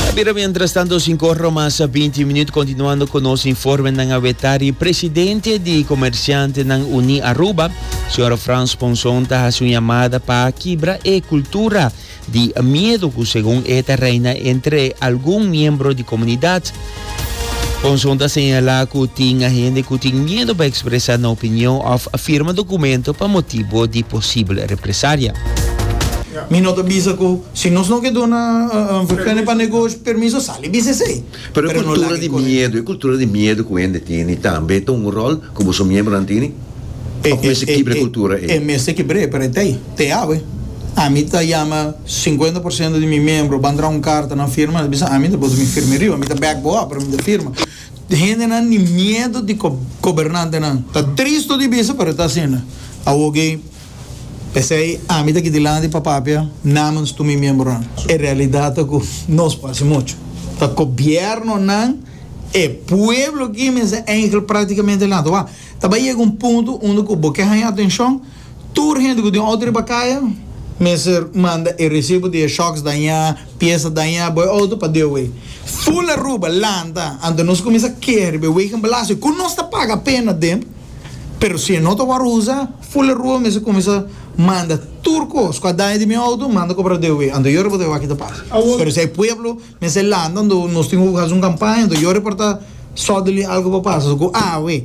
Ta bira mientras tanto cinco horas más a 20 minutos continuando con nos informe nan a wetari presidente di comerciante nan uni Aruba señora Frans Ponson ta hace un llamada pa kibra e cultura di miedo ku según eta reina entre algún miembro di comunidad Conson ta señala cu tin hende cu tin miedo pa expresa nan opinion of firma documento pa motibo di posibel represalia. Mi no ta bisa cu si nos no ke duna VPN pa negoshi permiso sali bisa esey, pero no laga e cosa ey. Pero e cultura di miedo cu hende tini tambe ta un rol cu boso miembronan tini? Of mester kibra e cultura ey? E mester kibra ey pero e ta ey. Te awe, ami ta yama sinkuenta por siento di mi miembro ban traha un karta nan firma, nan bisa ami ta boto mi firma riba, mi ta bek bo awe pero mi ta firma. Hendenan di miedu di gobernantenan ta tristu di bisa pero e ta asina awo gei. P'esei ami ta kidilanti pa papia namens tur mi miembronan. E realidat ta ku nos por hasi muchu, ta gobièrnunan, e pueblo aki mes, e angel, praktikamente laat wak. Ta bai yega un punto unda ku bo ke haña atenshon. Tur hende ku tin outo riba kaya mester manda e resibo di e shocks dañá, piesa dañá bo e outo pa DOW. Full Aruba lanta anto nos kuminsá keha riba e wegenbelasting ku nos ta paga apena den, pero si e no ta wòrdu usa, Full Aruba mester kuminsá manda tur kos ku a daña di mi outo manda kobra DOW. Anto yo riba ta ewa kit a pasa, pero si hay pueblo. Mester e lanta do nos tin hopi hasi un kampaña do yo reportá sodely algo por pasa so ku awe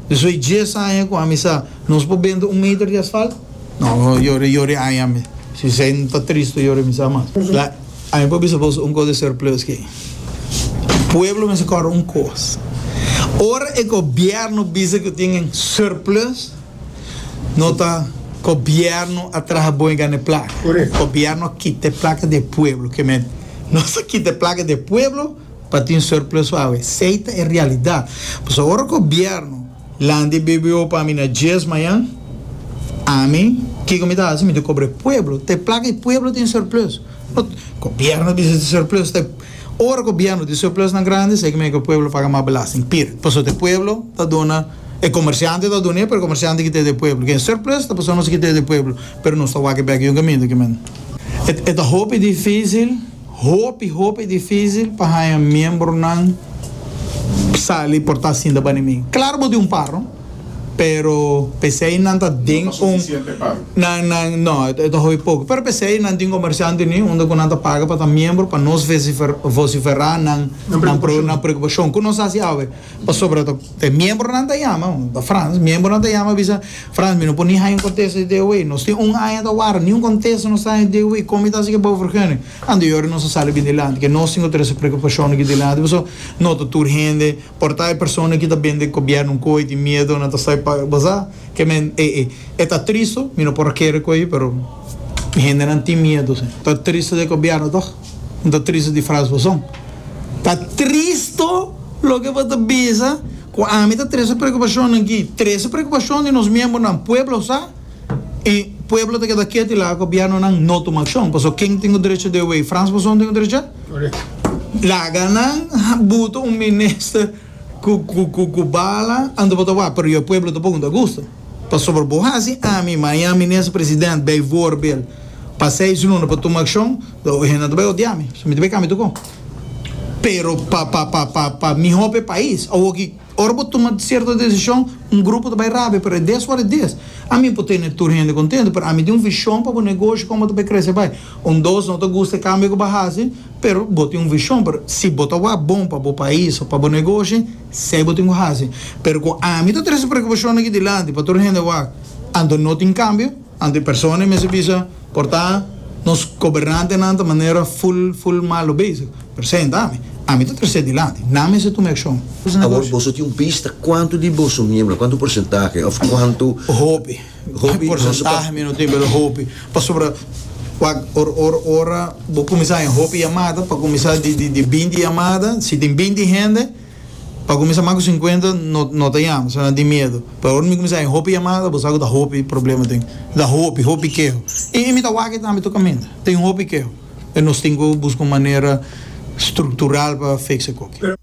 despues di dies aña ku ami sa nos por bende un meter di asfalt no no yori yori aña ami si esei no ta tristo yori mi sa mas la ami por bisa boso un kos di surplus ke pueblo mester kore un kos ora e gobierno bisa ku tin surplus. No ta gobierno a traha bon y gana e placa. Gobierno a kita e placa di e pueblo. Ke men nos a kita e placa di e pueblo pa tin surplus pa awe. Esey ta e realidad. Pasobra ora gobierno lanta e BBO pa mi na dies mayan, ami kiko mi ta haci? Mi ta cobra e pueblo. Ta e placa di e pueblo tin surplus. Gobierno bisa tin surplus. Ora gobierno tin surplusnan grandi esaki mester pa pueblo paga mas belasting. Pir. Pasobra e pueblo ta duna, e comerciante ta dun'e pero e comerciante ta kita e di e pueblo. Ken surplus ta pasobra nos ta kita e di e pueblo pero nos ta wak e bek di un caminda kimen. E ta hopi dificil, hopi hopi dificil pa haya miembronan sali porta sinta bani mi. Claro bo tin un par no. pero p'esei nan ta den un nan nan no e ta hopi poko pero p'esei nan tin komersiante ni unda ku nan ta paga pa ta miembro pa nos vesifer vosiferá nan nan pre nan preokupashon ku nos hasi awe pasobra ta e miembronan ta yama bo ta Frans miembronan ta yama a bisa Frans mi no por ni haña un kontesto di dia wei nos tin un aña ta wara ni un kontesto nos ta haña di dia wei kon mi ta hasi ke bobo vergenoy anto yori nos a sali bindilanti ke nos tin ku trese preokupashonnan ki dilanti pasobra no ta tur hende Por ta e persona ki ta bende gobièrnu un koe di miedo nan ta sai pa basá ke men e e e ta tristu mi no por a kere koe pero mi hendenan tin miedo si. Ta tristu di e gobièrnu tòg no ta tristu di Frans Fason ta tristu loke bo ta bisa ku ami ta trese preokupashonnan ki trese preokupashon di nos miembronan pueblo sa. y pueblo ta keda keto y laga gobierno nan no tuma accion pasobra ken tin un derecho de way Frans Fason tin un derecho laga nan butu un minister cu cu cu bala anto bo ta wak pero yo pueblo ta pon ta gusto pasobra bo haci ami maña minister president bay voor bel pa seis luna pa tuma accion lo hende nan ta bay odiami so mi ta bay cambia tucu pero pa pa pa pa miho pa e pais awoki. Ora bo tuma cierto decision un grupo ta bay rabia pero it is what it is. A mi por tene tur hende contento pero a mi tin un vision pa bo negoshi con bo ta bay crece bay. Un dos no ta gusta e cambio cu bo a haci pero bo tin un vision pero si bo ta wak bon pa bo pais o pa bo negoshi sey bo tin cu haci pero cu a mi ta trae su preocupacionnan aki dilanti pa tur hende wak anto no tin cambio. Anto e persona mester bisa, Por ta nos gobernantenan ta manera ful, ful malo bezig. Presenta mi. Ami ta trese dilanti. Nan mester tuma e akshon. Awor boso tin un bista kuantu di boso miembronan, kuantu porsentahe òf kuantu? Hopi. Hopi. Porsentahe mi no tin, pero hopi. Pasobra wak or, or, ora bo kuminsá, hopi yamada pa kuminsá di, di, di binti yamada. Si tin binti hende. Pa kuminsá mas ku sinkuenta no no ta yama, asina tin miedu. Pero ora mi kuminsá haña hopi yamada, bo sa ku ta hopi problema tin. Ta hopi, hopi keho. I i mi ta wak ei tambe tur kaminda. Tin hopi keho. Nos tin ku buska un manera struktural pa fiksa kokie.